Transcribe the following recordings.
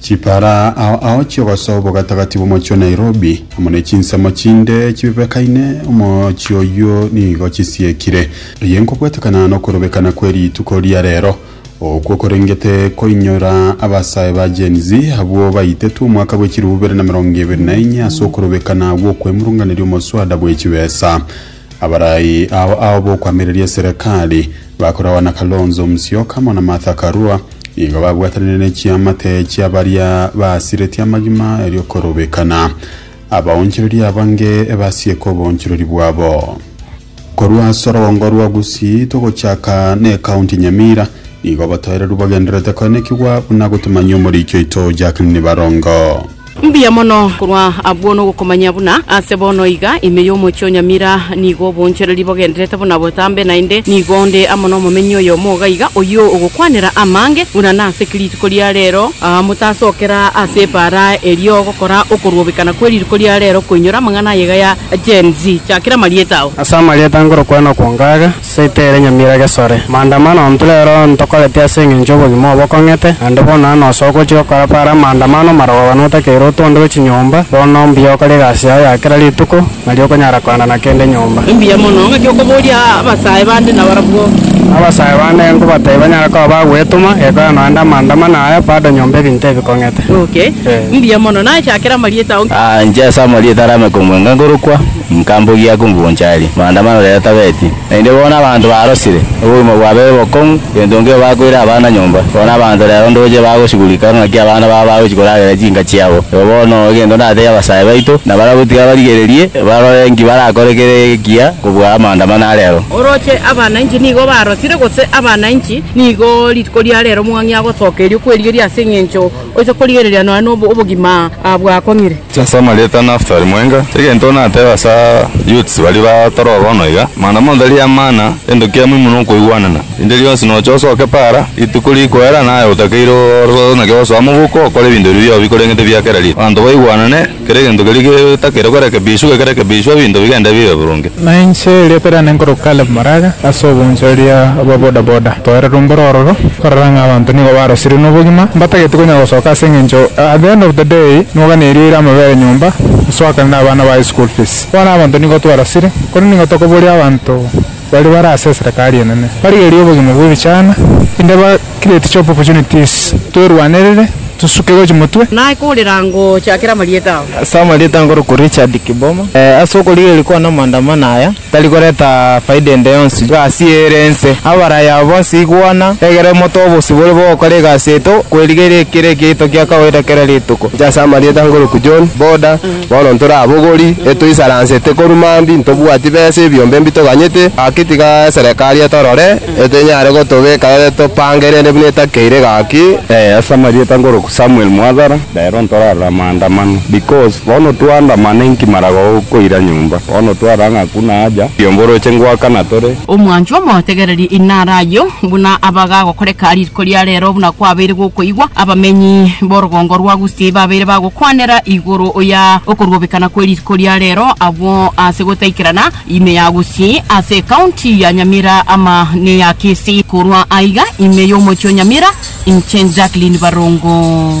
Chipara ao ao chiogosa obogatagati bw'omochie o Nairobi amo ne chinsemo chinde chibebekaine omochie oyio nigo chisiekire. Eye nkobwetekana nokorobekana kwe rituko ria rero, okwo korengete koinyora abasae ba Gen Z abwo baitetwe omwaka bwe chilifu bibere na emerongo ebere na enye ase okorobekana gw'okwemurunganeria omoswada bwe chibesa. Abarai ao ao b'okwamireria eserekari, bakoragwa na Kalonzo Musyoka amo na Martha Karua, nigo babwatanire ne chiamate chia baria basiretie amagima eriokorobekana abaonchorori abange basieke oboonchorori bwabo. Korwa ase orogongo rwa Gusii togochaka n'Ekaunti Nyamira, nigo abatoereru bagendererete koenekigwa buna gotumanyia omoriicho oito Jack Nibarongo. Mbuya mono! Korwa abwo nogokomanya buna ase bono iga, ime y'omochie o Nyamira, nigo obonchereri bogendererete buna botambe, naende nigo nde amo nomomenyi oyomo oga iga, oyio ogokwanera amange buna nase kirituko ria rero. Aa motasokera ase ebaara erio gokora okoruobekana kwe rituko ria rero koinyora amang'ana aye iga ya Gen Z. Chakera amarieta ao. Ase amarieta ngorokwana kwonka aga. Seita ere nyamira gesore. Maandamano intwe rero ntokoreti ase engencho y'obogima obo okong'ete, naende bono nao nosoa ogochia gokora para amaandamano marogogane otakeire otu onde gwe chinyomba, bono mbuya okore egasi yao ya kera rituko, nari okonyara koenda na kende nyomba. Mbuya mono ng'aki okoboria abasae bande nabarabwo. Abasae bande genkobatabi banyare koba bagwetoma, gekora noende amaandamano aya, bado nyomba ebinto ebi kong'ete. Okay. Mbuya mono. Naechakere amarieta onsi. Inche ase amarieta arame komwenga ngorokwa. Nka mbogia ya komugoncha aria, maandamano rero tabeti. Naende bono abanto barosire, obogima bwabere bokong'u, gento nkeiyo bakoire abana nyomba. Bono abanto rero ndoche bagosigurika ng'aki abana babo bagochia koragera chinka chiabo. Eba bono egento ndatebi abasae baito, nabarabwo tiga barigererie, barore inki barakore kere ekiya kobua amaandamano a rero. Oroche abanainchi nigo barosire, gose abanainchi nigo rituko ria rero mong'ang'ia gosoka erio kwerigeria ase eng'encho Oise korigereria nonya nobo obogima bwakong'ire. Ase amarieta a Naftali mwenga, egento natebe ase a youths baria ba toro bono iga, mana monto ri'amana, gento kia muhimu nokoigwanana. Rinde rionsi noche osoke para, rituko rikwera naye otakeire ore naki osoa mobuko okore ebinto biria biobi koreng'ete bia kera riro. Abanto baigwanane. Kera egento keria getakeire korekebishwa, gekerekebishwa, ebinto bigende bibe boronge. Na inche erio ekero nare nkoroka Caleb Maraga, ase oboonchoreria bwa boda boda, toeire romboro ororo, korora ng'a abanto nigo barosirio nobogima, mbatageti konya gosoka ase engencho at the end of the day nigo gane erio eire amabere nyomba, gosoakana na abana baye school fees. Bono abanto nigo twarosire, korende nigo tokoboria abanto. Baria bare ase eserekari enene barigererie obogima bw'ebichana in the ba create job opportunities twerwanerere tosuke gochia motwe. Naye korera ngocha kera marieta ao. Ase amarieta nkorokwa Richard Kiboma, ase okorigereria kwane amaandamano aya tari koreta faida ende yonsi egasi eye ere ense. Abaraya aba bonsi igwana, egere mote obosibore bw'ogokora egasi yaito, kwerigeria ekero ekeito giakagoita kera rituko. Inche ase amarieta nkorokwa John, Boda, Bono ntore abogori, etoisaransete korwa mambia, ntobwati besa ebiombe mbi toganyete, gaki tiga eserekari etorore, etenyare gotobeka ere topangerene buna etakeire gaki. Ee, ase amarieta nkoroku Samuel Mwathara, rero ntorarore amaandamano, because bono twaandamana inki mara gokoira nyomba, bono twarora ng'a hakuna haja, ebiombe oroche ngoaka na tore. Omwanchwa omotegererie inara ayio, buna abaga agokoreka riko ria rero, buna kwabeire gokoigwa, abamenyi b'orogongo rwa Gusii babeire bagokoreka. Kwanera igoro oya okoruobekana kwe riko ria rero abwo ase gotaikerana ime ya Gusii ase ecounty ya Nyamira ama neya Kisii. Korwa aiga ime y'omochie o Nyamira inche Jacqueline Barongo.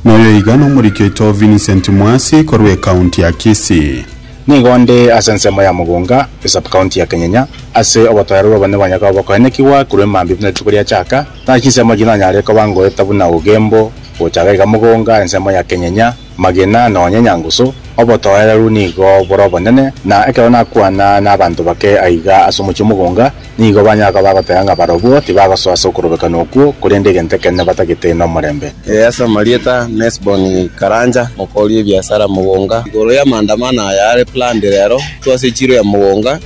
Noyo iga nomoriki oito Vincent Mwasi korwa ecounty ya Kisii. Nigo nde ase ensemo ya Mugunga, esubcounty ya Kenyenya, ase obotoero bw'obonene bwa Nyakobo, koenekigwa korwa emambia buna rituko riachaka, Naki ensemo eke nonyare koba ngoeta buna obogembo, gochaga iga mogonga, ensemo ya kenyenya, magena, nonya enyangusu. Obotoereru nigo bore obonene, na ekero nakwana n'abanto bake aiga ase omochie omogonga, nigo banyara koba bagoteba ng'a barobwo tibagosoa ase okorobekana okwo, korende egento ekenene batagete nomorembe. Ee, ase amarieta n'Hesboni karanja mokoria ebiasara mogonga. Igoro y'amaandamano aya are planned rero, twase echiro ya mogonga.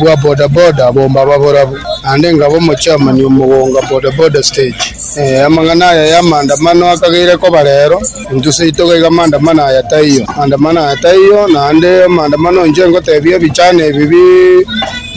bwa bodaboda abwo mbaba borabu, naende nkaba omochairman omogonga bodaboda stage. Amang'ana aya y'amaandamano akageire koba rero, intwe seito gaiga amaandamano aya taiyo, amaandamano aya taiyo, naende amaandamano onche nkotebia ebichana ebi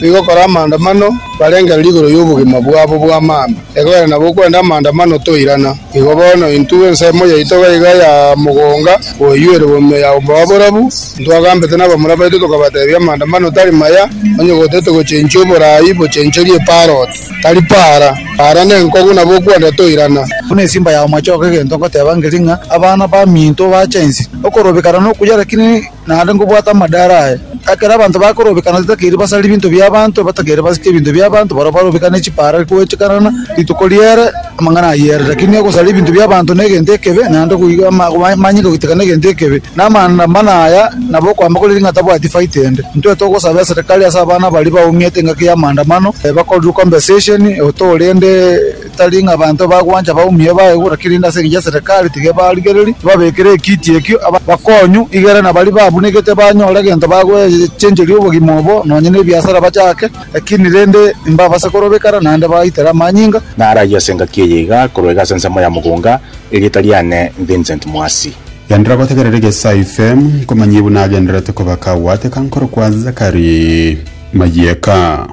bigokora amaandamano, barenge riria igoro y'obogima bwabo bw'amaambia, ekogera nabo okwenda amaandamano toirana. Igo bono intwe ensemo yaito gaiga ya mogonga koyuerwa bomuya ya oboa borabu, intwagambete nabamura baito tokabatebia, Amaandamano tari maya, onye gotete gochenchia oboraai bochencherie parrot, tari para. Para nenkogu nabo okwenda toirana. Buna esimba ya omochoko egento ngoteba ngeri ng'a abana baminto bache inse, okorobekana nokuya, lakini. naende nkobwate amadara aye. Ekero abanto bakorobekana titakeiri basare ebinto bi'abanto, batakeire basike ebinto bi'abanto, barabwo barobekane chipara goechekanana rituko riere amang'ana ayere. Rakini ogosara ebinto bi'abanto negento ekebe, naende goiga amanye goiteka negento ekebe. Na amanda mana aya nabo okoamba kore ng'a tabwati faita ende. Intwe togosaba eserekari ase abana baria baumete engaki y'amaandamano, bakorerwe compensation, otoorende, Tari ng'a abanto bagwancha baumie baegure, kerende ase engencho ya Serikali tibebarigereria, tibabekire ekiti ekio aba bakonyu, igere na baria babunigete banyore egento bagwechencheria obogima obo, nonya nebiasara bachake, lakini rende imbabase korobekana naende baitere amanyinga. Naraiyo ase engaki eye iga korwa iga ase ensemo ya mogonga, erieta riane Vincent Mwasi. Genderera gotegerera egesaifm, nkomanyie buna agendererete koba kagwateka nkorokwa Zachary. mayieka.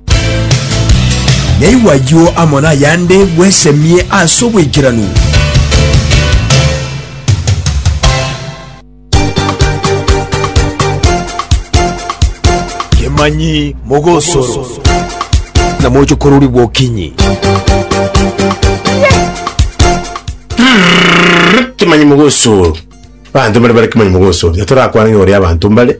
Naigwe ayio amo nayande, bwesemie ase obwekeranu. Kemanyi mogosoro. Na mochokorori bw'okinyi. Kemanyi mogosoro. Abanto mbare bare kemanyi mogosoro. Tiga torakwane ng'a ore abanto mbare.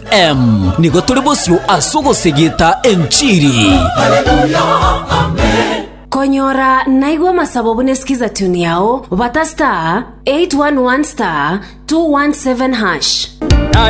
Em, nigo tore bosio ase ogosegeta enchiri. Konyora naigwa amasabo buna esikiza tune yao, bata star 811 star 217 hash.